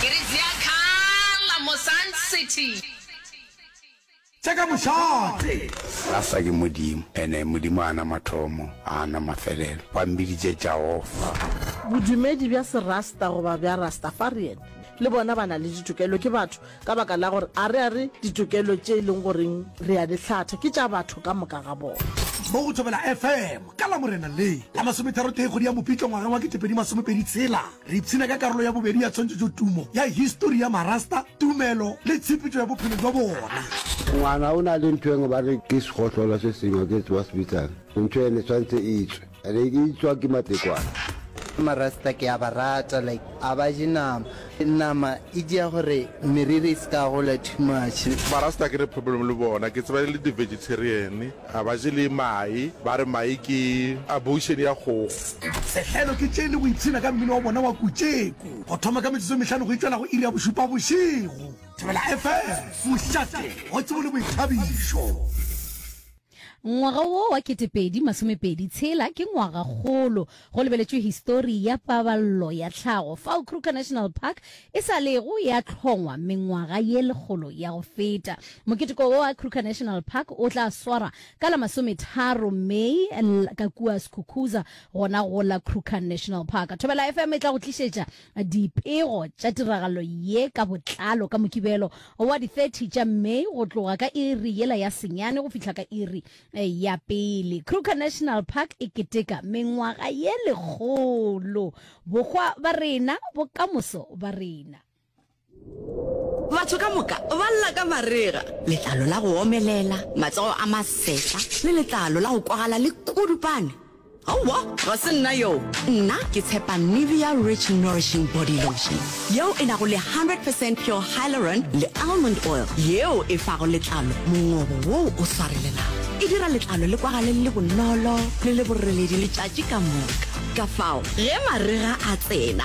Ke re Ziakhala mo Sun City. Tša ka mošate. Rasa ke Modimo, ene Modimo ga a na mathomo, ga a na mafelelo. Ba mmiditše Jaofa. Bodumedi bja Serasta goba bja Rastafarian le bona ba na le ditokelo, ke batho. Ka baka la gore a re a re ditokelo tše e leng goreng re a di hlatha ke tša batho ka moka ga bona. Mo go Thobela FM ka Lamorena le la masometharotee kgwedi ya Mopitlo ngwaga wa ketepedi masomepedi tshela, re ipshina ka karolo ya bobedi ya tshwantšhetšotumo ya histori ya Marasta, tumelo le tshepetšo ya bophelo bja bona. Ngwana o na le ntho engwe ba re ke segohlolo se sengwe ke tseba se bitsang. Ntho ene tshwantse e tswe. Ene e tswa ke matekwane. Marasta ke a ba rata like a ba je nama. Nama e dia gore meriri e se ka gola too much. Marasta ke re problem le bona ke tseba e le di vegetarian a ba je le mae ba re mae ke abortion ya kgogo. Sehlelo ke tše le go ipshina ka mmino wa bona wa Kutšeku go thoma ka metsotso e mehlano go itšwela go iri ya bošupa bošego. Thobela FM, mošate wa tsebo le boithabišo. Ngwaga wo wa ketepedi masomepedi tshela ke ngwaga kgolo go lebeletšwe histori ya paballo ya tlhago fao Kruger National Park e sa lego ya hlongwa mengwaga ye lekgolo ya go feta. Moketeko wo wa Kruger National Park o tla swarwa ka la masometharo May ka kua Skukuza gona go la Kruger National Park. Thobela FM e tla go tlišetša Dipego tša tiragalo ye ka botlalo ka Mokibelo wa di 30 tša May go tloga ka iri yela ya senyane go fihla ka iri ya pele. Kruger National Park e keteka mengwaga ye lekgolo, bokgwa ba rena, bokamoso ba rena. Batho ka moka ba lla ka marega, letlalo la go omelela, matsogo a masefa le letlalo la go kwagala le kudupane. Aowa, ga se nna yoo. Nna ke tshepa Nivea Rich Nourishing Body Lotion, yeo e nago le 100 percent pure hyaluron le almond oil, yeo e fago letlalo mongobo woo o swarelelago. E dira letlalo le kwagale le le bonolo le le boreledi letšatši ka moka. Kafao ge marega a tsena,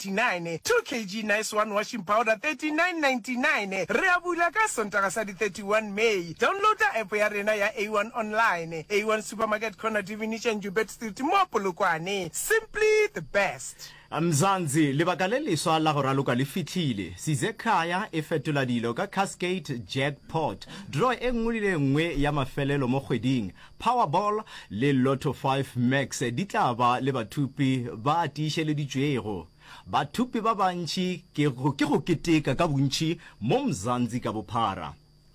39, 2 kg Nice One Washing Powder 39.99, re a bula ka Sontaga sa di 31 May. Downloada app ya rena ya A1 Online. A1 Supermarket Corner Divinitša Njubet Street mo Polokwane. Simply the best. Mzansi, lebaka le leswa la go raloka le fihlile. Size Khaya e fetola dilo ka Cascade Jackpot. Draw e nngwe le e nngwe ya mafelelo mo kgweding Powerball le Lotto Five Max di tla ba le bathupi ba tiišeleditšwego. Bathupi ba bantši ke ke go keteka ka bontši mo Mzanzi ka bophara.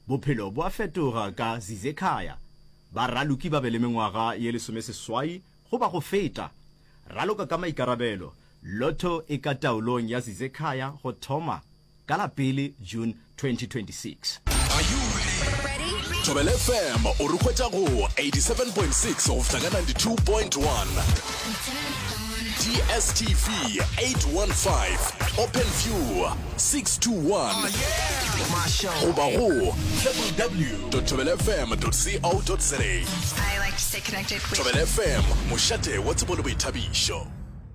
Bophelo bo a fetoga ka Zizekhaya. Ba raloki ba be le mengwaga ye lesomeseswai goba go feta. Raloka ka maikarabelo, Lotto e ka taolong ya Zizekhaya go thoma ka la pele June 2026. Are you ready? Thobela FM o re hwetša go 87.6 go fihla ka 92.1. DSTV 815 Open View 621 goba go www.thobelafm.co.za. I like to stay connected with Thobela FM mošate wa tsebo le boithabišo.